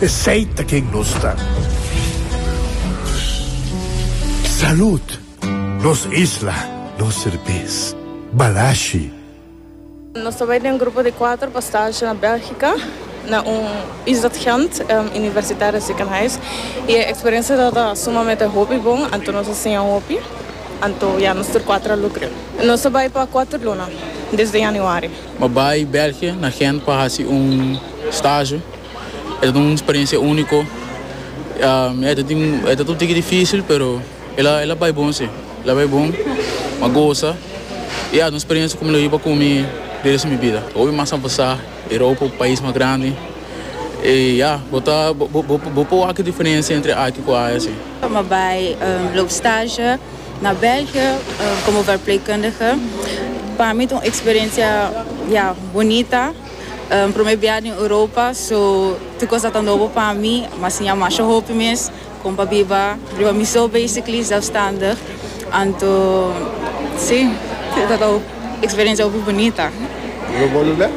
Esey ta ken nos ta. Salud! Nos isla, nos serbes. Balashi. Nos ta bai den grupo di kuater pa stage na Belgica na un Isdat Gent universitario ziekenhuis y e experiencia tabata sumamente hopi bon anto nos a siña hopi anto ya nos tur kuater a lukre. Nos ta bai pa kuater luna desde Januari. Bo bai België na Gent pa haci un stage? e ta tin un experiencia unico e ta tin e ta tur tiki dificil pero ela ela bay bon si ela bay bon ma goza y a un experiencia cu mi lo hiba cu mi di resto mi bida. Hopi mas a pasa Europa un pais mas grandi y ya bo ta bo por wak e diferencia entre aki cu aya si. M'a bay loop stage na België como verpleegkundige. Pa mi ta un experiencia ya bonita. Prome biaha den Europa so tur cos ata nobo pa mi mas siña masha hopi mes con pa biba riba mi so basically zelfstandig anto si tabata un experiencia hopi bunita. Lo bolu bek?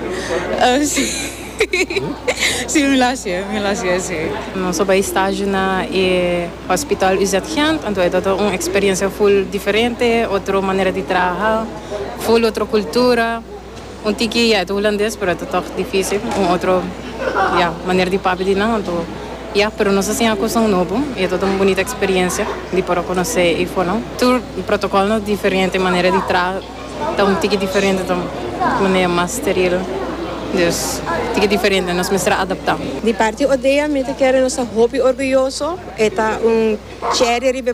Si si mi lo hacié mi lo hacié si. Nos so bay stage na e hospital UZ Gent anto e tabata un experiencia full diferente otro manera di traha full otro cultura. Un tiki ya, e ta hulandes pero e ta tog dificil, un otro ya, manera di papia di nan anto ya, pero nos a siña cosnan nobo y e ta ta un bunita experiencia di por a conoce e hifonan. Tur protocol nos diferente, manera di traha ta un tiki diferente ta manera mas steril, dus tiki diferente nos mester a adapta. Di parti Odea mi ta kere nos ta hopi orguyoso, e ta un cherry riba e.